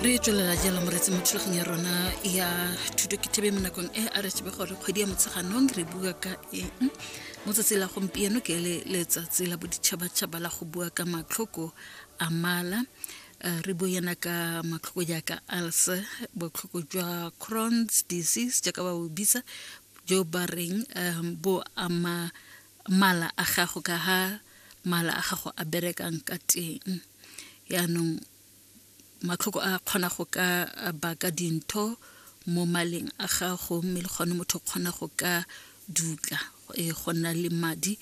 re tswelela jalo moretsi mo thulagong ya rona ya thuto ke thebe mo nakong e a re tsebe gore kgwedi ya motsheganong re bua ka eng mo tsatsi la gompieno ke le letsatsi la boditšhabatšhaba la go bua ka matlhoko a mala eh, re bue yana ka matlhoko jaaka ulcer botlhoko jwa crons disease jaaka ba bo bitsa jo ba reng um, bo ama mala a gago ka ha mala a gago a berekang ka teng yaanong matlhoko a kgona go ka baka dintho mo maleng a gago mme le gone motho o kgona go ka dutla e go nna le madi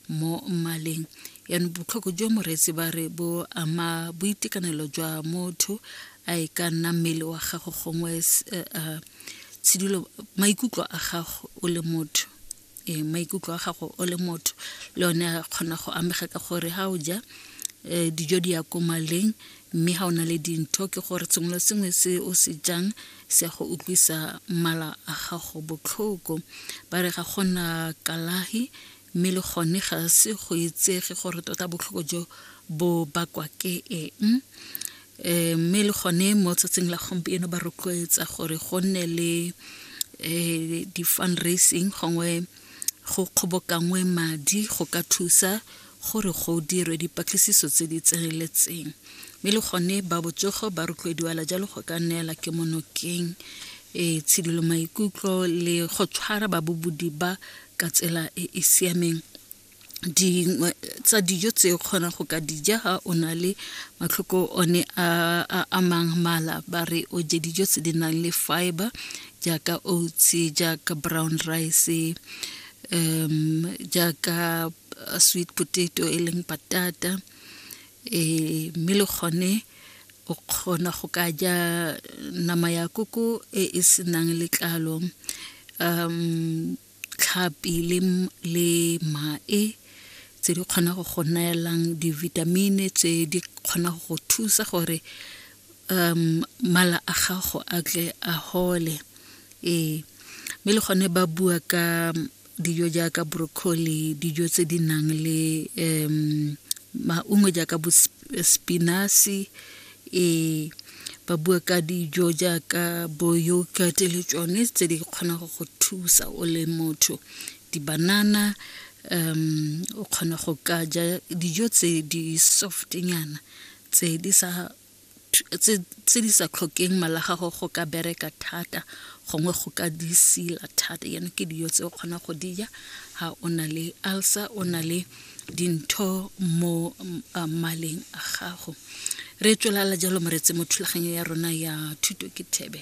mo mmaleng yaanong botlhoko jo moreetsi ba re bo ama boitekanelo jwa motho a e ka nna mmele wa gago gongwe eh, eh, tshidulo maikutlo a gago o le motho e maikutlo a gago o le motho le one a kgona go amega ka gore ga o ja um dijo di ya ko maleng mme ga o na le dintho ke gore sengwe le sengwe se o se jang se ya go utlwisa mala a gago botlhoko ba re ga gona kalahi mme le gone ga se go etsege gore tota botlhoko jo bo bakwa ke eng eh, mme le gone mo tsatsing la gompieno ba rotloetsa gore go nne le eh, di-fundraising gongwe go kgobokangwe madi go ka thusa gore go dirwe dipatlisiso tse di tseneletseng mme le gone ba botsogo ba rotloediwala jalo go ka neela ke monokeng e tshidilo maikutlo le go tshwara babobodi ba ka tsela e e siameng dingwe tsa dijo tse o kgona go ka dija ha o na le matlhoko one a a amang mala ba re o je dijo tse di nang le fiber jaaka oats jaaka brown rice um jaaka uh, sweet potato e leng patata e mme le gone o kgona go ka ja nama ya koko e e senang letlalo um tlhapi le mae tse di kgona go go neelang divitamine tse di kgona go go thusa gore um mala a gago a tle a hole ee mme le gone ba bua ka dijo jaaka broccoli dijo tse di nang le um maungo jaaka bo spinasi e ba bua ka dijo jaaka bo yogurt le tsone tse di kgona go go thusa o le motho dibanana um o kgona go ka ja dijo tse di soft nyana tse di sa tse di sa tlhokeng mala gago go ka bereka thata gongwe go ka di sila thata yana ke dijo tse o kgona go dija ga o na le ulcer o na le dintho mo maleng a gago re tswelala jalo moreetse mo thulaganyo ya rona ya thuto ke thebe